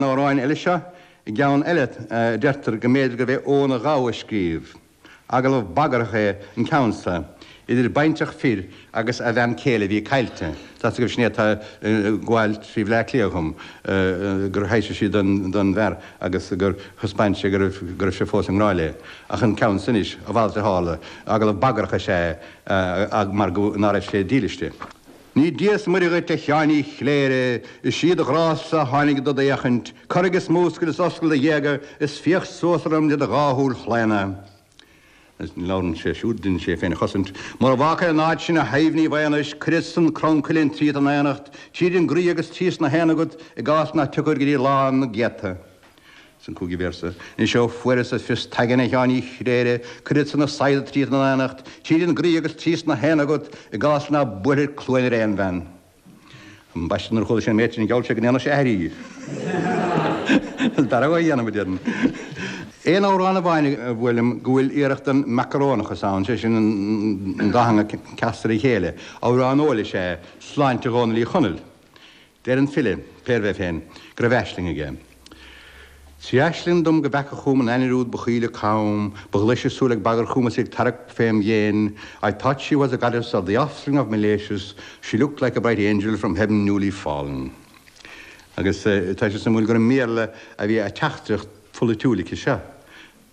amhráin eile seo é ceann eile a deirtear go mb'fhéidir gurbh é Eoghan a Ghabha a scríobh. Agallamh bagarthach é an ceann so idir baintreach fir agus a bhean chéile a bhí caillte. Tá a fhios agaibh sin é atá ag gabháil trí Bhleá Cliath dhom, gur thaibhsigh sí don bhfear agus gur thaispeáin sé go raibh sé fós i ngrá léi. Ach an ceann so anois, a mhalairt a tharla, agallamh bagarthach is ea é mar nár fhan sé dílis di. Ní Dia is Muire dhuit, a Sheáin Uí Chléire, is í do ghrá-sa a tháinig dod fhéachaint, corraigh is múscail is oscail do ghéaga is féach suas orm le do dhá shúil chlaona. Labhrann sé siúd, deineann sé é féin a chosaint. Mura bhfágfair an áit sin a thaobh ní bheadh anois, cuirfead-sa an crann cuilinn tríot in aonacht, tríd an gcroí agus trí sna haenna agat, i gcás ná tiocfair go dtí lá na gcéadta. San cúigiú véarsa. Is ó fuaireas-sa fios t'aigne a Sheáin Uí Chléire, cuirfead-sa na saigheada tríot in aonacht, tríd an gcroí agus trí sna haenna agat, i gcás ná buailfir cluain ar aon bhean. Am baiste nuair a chuala sé an méid sin gheall sé go ndéanfadh sé aithrí. An dara a dhéanfaidh muid, a deirim. Aon amhrán amháin a bhuail liom go bhfuil iarracht den mhacarónachas ann, sé sin an dá theanga casta le chéile. Amhrán óil is ea é, Sláinte Dhónaill Uí Chonaill. Deir an file, pérbh é féin, go raibh aisling aige, Trí aisling dom go bhfeaca chugam an ainnir úd ba chaoile com, ba ghlaise súil ag bagairt chugam is í ag tarrac fém dhéin, I thought she was a goddess of the offspring of Milesius, she looked like a bright angel from heaven newly fallen. Agus tá sé suimiúil gur i mBéarla a bhí a teachtaireacht pholaitiúil aici seo.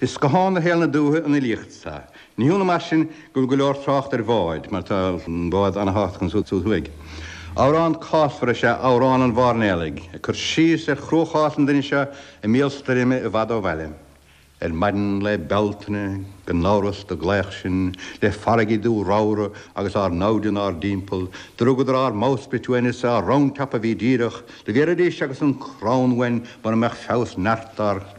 Is scáthán do shaol na dúiche an fhilíocht so. Ní hionadh mar sin go bhfuil go leor trácht ar bháid, mar tá an bád an-thábhachtach ansúd thuaidh. Amhrán cásmhar is ea 'Amhrán an Mhairnéalaigh' ag cur síos ar chruachás an duine seo i mbéal stoirme i bhfad ó bhaile. Ar maidin lae Bealtaine, gan amhras, do glaodh sinn le farraigí dubha ramhra agus ár namhaid inár dtimpeall, do rugadar ár mbowsprit uainn is ár roundtop a bhí díreach, do bhéarfaidís agus an crann uainn mura mbeadh feabhas neart ár.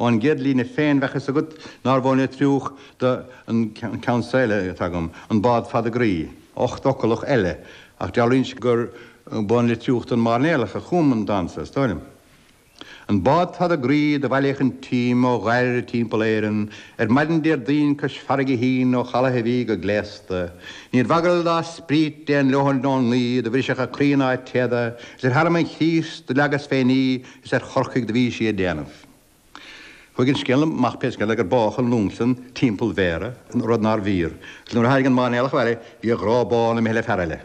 Ón gcéad líne féin bheadh 'fhios agat nárbh ón Leitriúch dó. An ceann so eile atá agam, an bád fada groí, ochtfhoclach eile, ach dealraíonn sé gurbh ón Leitriúch don mhairnéalach a chum an dán so, is dóigh liom. An bád fada groí do bhailíodh an t-im ó Dhoire timpeall Éireann ar maidin Déardaoin cois farraige shín ó chalaith a bhí go gléasta, níorbh eagal dá spriot aon leoithne ón ngaoith do bhrisfeadh a crainn ná a téada is ar thearmann Chríost do leagas féin í Is ar Chorcaigh do bhí sí ag déanamh. Chuaigh an scéal amach pé scéal é gur bádh an Lumsden timpeall Bhéarra, rud nárbh fhíor, agus nuair a tháinig an máirnéalach abhaile bhí a ghrá bán imithe le fear eile.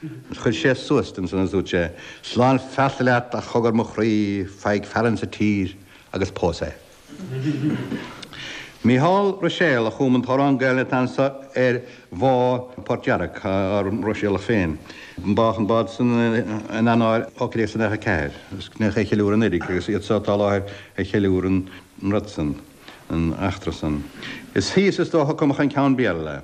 Agus chuir sé suas di, ansan agus dúirt sé, Slán feasta leat, a chogar mo chroí, faigh fear insa tír agus pós é. Mícheál Ruiséal a chum an t-amhrán Gaelainne atá anso ar bhá Port Yarrock, ár Ruiséalach féin. Bádh an bád san in Eanáir 1894 agus níor cheiliúradh an fhíric agus iad seo atá i láthair a cheiliúir an rud san, an eachtra san. Is thíos is dócha a cumadh an ceann Béarla.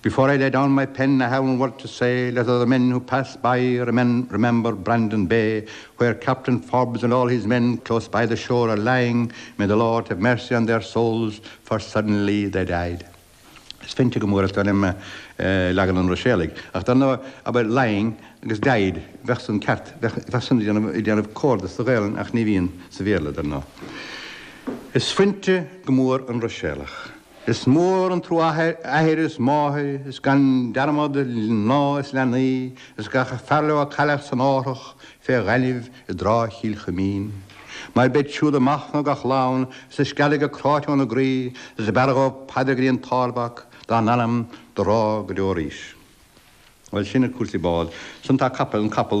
Before I lay down my pen I have one word to say, Let other men who pass by remember Brandon Bay, Where Captain Forbes and all his men close by the shore are lying, May the Lord have mercy on their souls for suddenly they died. Is fuinte go mór fada liom leagan an Ruiséalaigh, ach dar ndóigh, abair lying agus died, bheadh san ceart, bheadh san ag déanamh comhardadh sa Ghaelainn ach ní bhíonn sa Bhéarla, dar ndóigh. Is fuinte go mór an Ruiséalach. Is mór an trua athair is máthair is gan dearmad mná is leanaí is gach fear leo a cailleadh san árthach fé ghainimh i dTráigh Chill Chuimín. Mar beid siúd ag machnamh gach lá ann is ag screadaigh go cráite óna gcroí is b'fhearra dhóibh paidir go dtí an tArdmhac dá n-anam do rá go deo arís. Bhuel, sin cúrsaí bád. Ansan tá capaill, an capall.